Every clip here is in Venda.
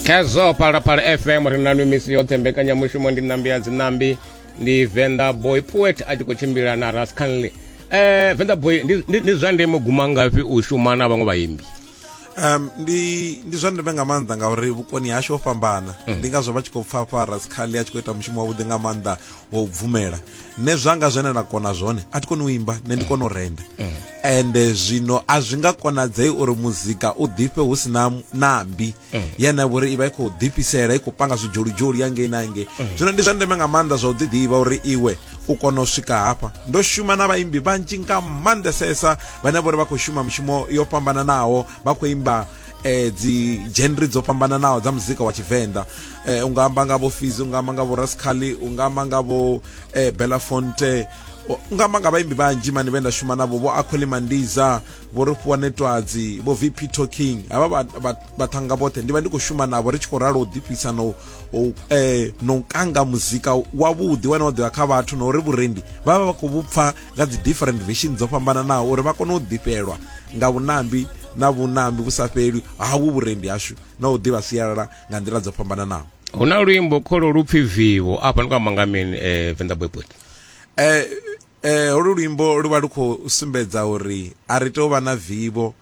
khezwo phalaphala fm ri nanu misi yoṱhe mbekanyamushumo ndi nambi ya dzinambi ndi venda boy poet a tshi khou tshimbila na rascanley eh venda boy ndi- ndi ndi zwa ndeme guma ngafhi u shuma na vhaṅwe vhaimbi um ndi ndi zwa ndeme nga maanḓa ngauri vhukoni hashu ho fhambana ndi ngazwo vha tshi khou pfha pfha rascali a tshi khou ita mushumo wavhuḓi nga maanḓa wa u bvumela nṋe zwanga zwine na kona zwone a thi koni u imba nṋe ndi kona u renda ende zwino a zwi nga konadzei uri muzika u ḓifhe hu si na nambi yene vhori i vha i khou ḓifhisela i khou panga zwidzholidzholi ya ngei na ngei zwino ndi zwa ndeme nga maanḓa zwa u ḓiḓivha uri iwe u kona u swika hafha ndo shuma na vhaimbi vhanzhi nga maanḓesesa vhane vhori vha khou shuma mushumo yo fhambananaho vha khou imba eh dzi genre dzo fhambananaho dza muzika wa tshivenḓa eh unga amba nga vho Fizi unga amba nga vho Rascali unga amba nga vho eh Belafonte unga amba nga vhaimbi vhanzhi mani vhe nda shuma navho vho Akhweli Mandiza vho Rifhiwa Netwadzi vho VP Talking havha vhathanga vhoṱhe ndi vha ndi khou shuma navho ri tshi khou ralo u ḓifhisa no eh no kanga muzika wavhuḓi wane wa ḓivha kha vhathu na uri vhurendi vha vha vha khou vhupfa nga dzi different version dzo fhambananaho uri vha kone u ḓifhelwa nga vhunambi na vhunambi vhu sa fheli hawu vhurendi hashu na u ḓivha sialala nga nḓila dzo fhambananaho hu na luimbo kholo lu pfi vivo afha ni kwamba nga mini um eh, venḓa boybot um eh, um eh, holu luimbo lu vha lu khou sumbedza uri a ri tou vha na vivo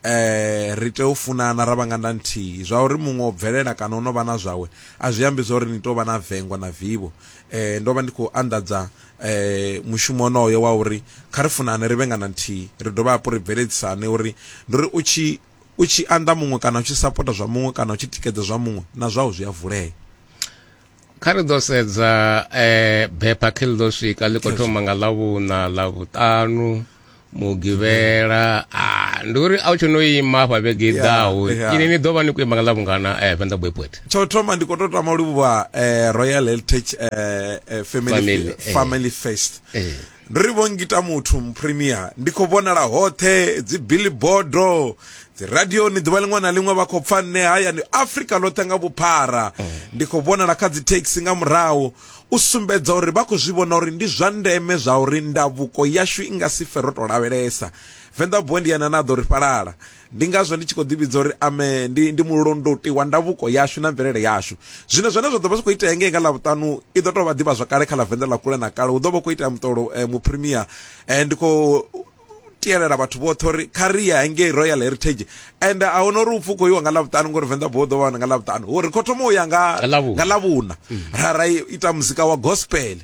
Ee, ri tea u funana ra vha nga nda nthihi. Zwa uri muṅwe o bvelela kana o no vha na zwawe a zwi ambi zwa uri ni tea u vha na vengo na vivho. Ee, ndo vha ndi khou anḓadza mushumo wonoyo wa uri kha ri funane ri vhe nga nda nthihi, ri dovhe hafhu ri bveledzisane uri ndi uri u tshi u tshi anḓa muṅwe kana u tshi sapota zwa muṅwe kana u tshi tikedza zwa muṅwe na zwau zwi a vulea. kha ri ḓo sedza eh, bepha khe ḽi ḓo swika ḽi khou thoma nga ḽavhuṋa ḽavhuṱanu mugivhela ah, ndi uri a u tsho no ima hafha vhege i ḓaho yeah. ini ni ḓo vha ni khou ima nga ḽavhungana eh, venḓa boypoet tsho thoma ndi khou tou tama u livhuwa eh, royal heritage eh, eh, family, Family, eh. family fest Eh. ndo ri vho ngita muthu muprimia ndi khou vhonala hoṱhe dzi billboardo dzi radioni ḓuvha liṅwe na liṅwe vha khou pfa nṋe hayani afrika ḽoṱhe nga vhuphara ndi khou vhonala kha dzi taxi nga murahu u sumbedza uri vha khou zwi vhona uri ndi zwa ndeme zwa uri ndavuko yashu i nga si fe ro tou lavhelesa venḓa bondi yana na ḓo ri fhalala Ndi ngazwo ndi tshi khou ḓivhidza uri ame ndi, ndi mulondoti wa ndavhuko yashu na mvelele yashu. Zwino zwine zwa ḓo vha zwi khou itea ngei nga Ḽavhuṱanu i ḓo tou vha ḓivha zwakale kha ḽa Venḓa ḽa kule na kale. Hu ḓo vha hu khou itea muṱolo eh, muprimia. Eh, ndi khou tielela vhathu vhoṱhe uri kha ri ye hangei royal heritage and a huna uri upfi u khou iwa nga lavhuṱanu ngori venḓa bo ḓo wana nga lavhuṱanu uri kho thoma u ya nga nga lavhuna ra ra ita muzika wa gospel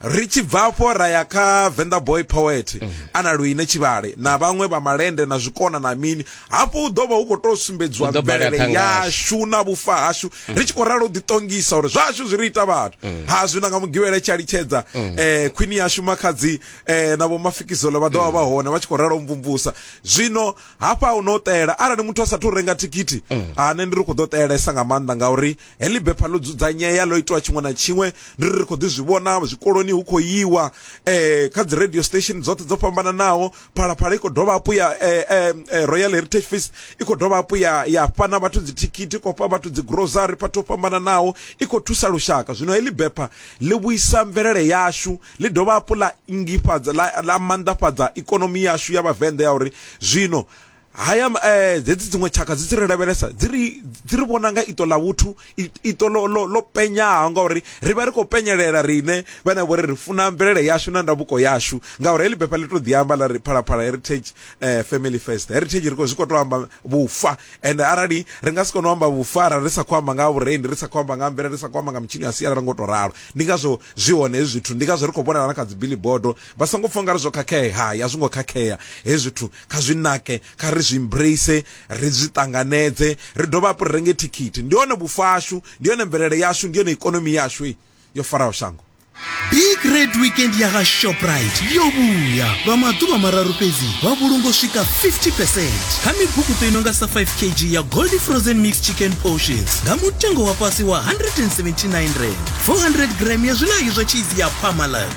ri tshi bva afho ra ya kha venḓa boy poet mm. ana luine tshivhale na vhaṅwe vha malende na zwikona na mini hafho u ḓo vha hu khou tou sumbedziwa mvelele yashu na vhufa hashu mm. ri tshi khou ralo ḓiṱongisa uri zwashu zwi ri ita vhathu mm. ha zwino nga mugivhele tshi a litshedza um khwini yashu makhadzi um na vhomafikizolo vha ḓovha vha hone vha tshi khou ralo mvumvusa zwino hafha hu no ṱela arali muthu a sathu renga thikhithi ane ndi ri khou ḓo ṱelesa nga maanḓa ngauri Heḽi bepha ḽo dzudzanyea ḽo itiwa tshiṅwe na tshiṅwe ndi ri ri khou ḓi zwi vhona zwikoloni hu khou yiwa um kha dzi radio station dzoṱhe dzo fhambananaho phalaphala i khou dovha hafhu ya royal heritage fees i khou dovha hafhu ya ya fha na vhathu dzithikhithi khou fha vhathu dzi grocery fhathu ho fhambananaho i khou thusa lushaka zwino heḽi bepha ḽi vhuisa mvelele yashu ḽi dovha hafhu ḽa ingifhadza ḽa maanḓafhadza ikonomi yashu ya vhavenḓa ya uri zwino haya eh, dzedzi dziṅwe tshaka dzi tshi ri lavhelesa dzi ri dzi ri vhona nga iṱo ḽa vhuthu iṱo lo lo lo penyaho ngauri ri vha ri khou penyelela riṋe vhane vho ri ri funa mvelele yashu na ndavhuko yashu ngauri heḽi befa ḽi to ḓi amba ḽa ri phalaphala heritage eh, family first heritage ri khou zwi khou tou amba vhufa and arali ri nga si kone u amba vhufa arali ri sa khou amba nga vhurendi ri sa khou amba nga mvelele ri sa khou amba nga mitshini ya sialala ngo tou ralo ndi ngazwo zwi hone hezwi zwithu ndi ngazwo ri khou vhonala na kha dzi billboard Vha songo pfa ungari zwo khakhea, hai a zwi ngo khakhea hezwi zwithu kha zwi nake, kha ri zwi embrace, ri zwi ṱanganedze, ri dovhe hafhu ri renge thikhithi. Ndi hone vhufa hashu, ndi yone mvelele yashu, ndi yone ikonomi yashu yo faraho shango. Big Red Weekend ya kha Shoprite yo vhuya! Lwa maḓuvha mararu fhedzi vha vhulunga u swika 50 percent kha mibukuṱo i no nga sa 5 kg ya Goldie Frozen Mixed Chicken Portions nga mutengo wa fhasi wa R179, 400 gram ya zwiḽayo zwa tshizi ya Parmalat